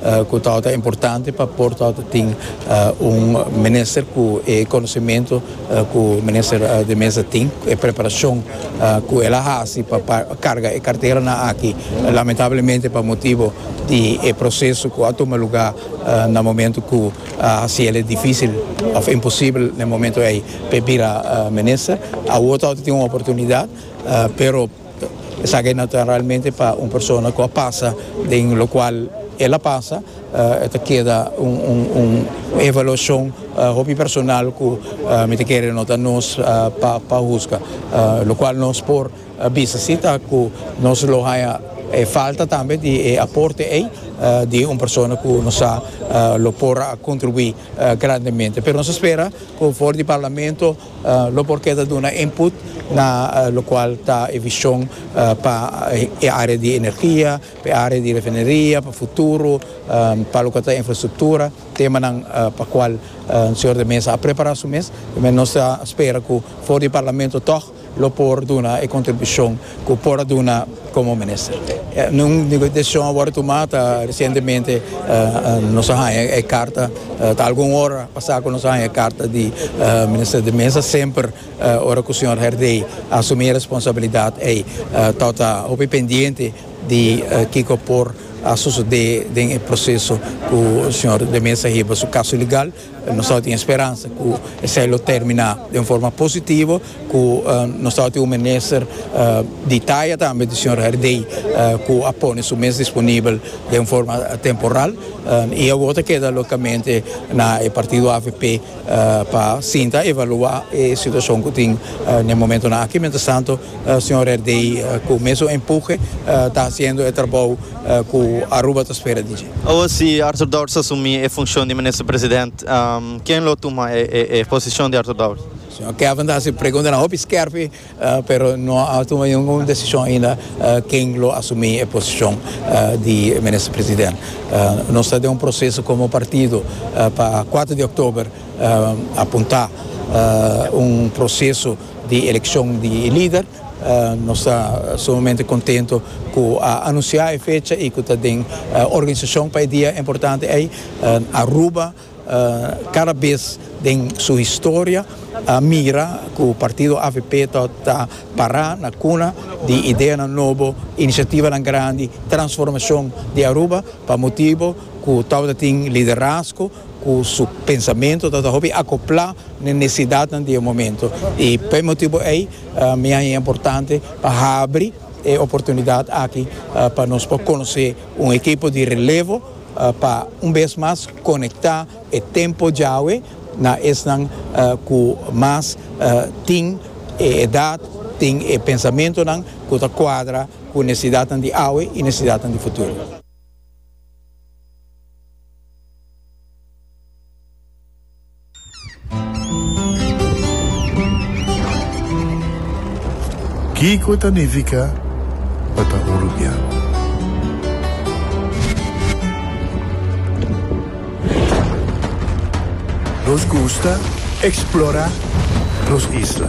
Cu tawata ta importante pa por tawata tin un minister cu e conociemento cu minister de Meza tin, cu e preparacion cu el a haci pa carga e carteranan aki. Lamentablemente pa motibo di e proceso cu a tuma lugar na momento cu a haci el'e dificil of imposible na e momento ey pa e bira minister. Awo tawata tin un oportunidad pero. Esaki no ta realmente pa un persona cu a pasa den locual el a pasa, e ta keda un evaluacion hopi personal cu mi ta kere no ta nos pa husga. Locual nos por bisa si ta cu nos lo haya e falta tambe di e aporte ey di un persona cu nos sa lo por a contribui grandemente. Pero nos a spera cu for di Parlamento Lo por keda duna input na lokual ta e vishon pa e area di energia, pa e area di refineria, pa futuro, pa loke ta infrastruktura, temanan pa kual Señor de Meza a prepara su mes. Nos ta spera ku for di Parlamento tog lo por duna e kontribushon cu por a duna como minister. Un decision a worde tuma ta recientemente nos a haya e carta, ta algun ora pasa cu nos a haya e carta di Minister de Meza, semper ora cu señor Herdey a asumi e responsabilidad ey ta ta hopi pendiente di kico por a sucede den e proceso cu señor de Meza hiba su caso legal. Nos ta tin e speransa cu esey lo termina den forma positivo, cu nos ta tin un minister di taya tambe di señor Herdey cu a pone su mes disponibel den forma temporal y awo ta keda logicamente na e partido avp pa sinta evalua e situacion cu tin n'e momentonan aki. Mientras tanto señor Herdey cu mesun empuje ta haciendo e trabou. ku Aruba ta spera di dje. Awa si Arthur Dowers asumí e funshon di Minister President, ken lo tuma e posishon di Arthur Dowers? Señor Kevin ta hasi e preguntanan hopi skèrpi, pero no a tuma ningun desishon ainda ken lo asumí e posishon di Minister President. Nos ta den un proseso komo partido pa kuater di òktober a puntá un proseso di elekshon di e lider. Nos ta sumamente contento cu a anuncia e fecha y cu ta den organisacion pa e dia importante ey. Aruba cada bes den su historia a mira cu partido avp ta ta para na cuna di ideanan nobo, iniciativanan grandi, transformacion di Aruba pa motibo cu tabata tin liderazgo. cu su pensamiento ta hopi acopla na e necesidadnan di e momento y pa e motibo ey mi haya importante pa habri e oportunidad aki pa nos por conoce un ekipo di relevo pa un bes mas conecta e tempo djawe na esnan cu mas tin e edad, tin e pensamentonan cu ta cuadra cu necesidadnan di awe y necesidadnan di futuro. Kiko ta nifica pa ta un rubian? Nos gusta explora nos isla.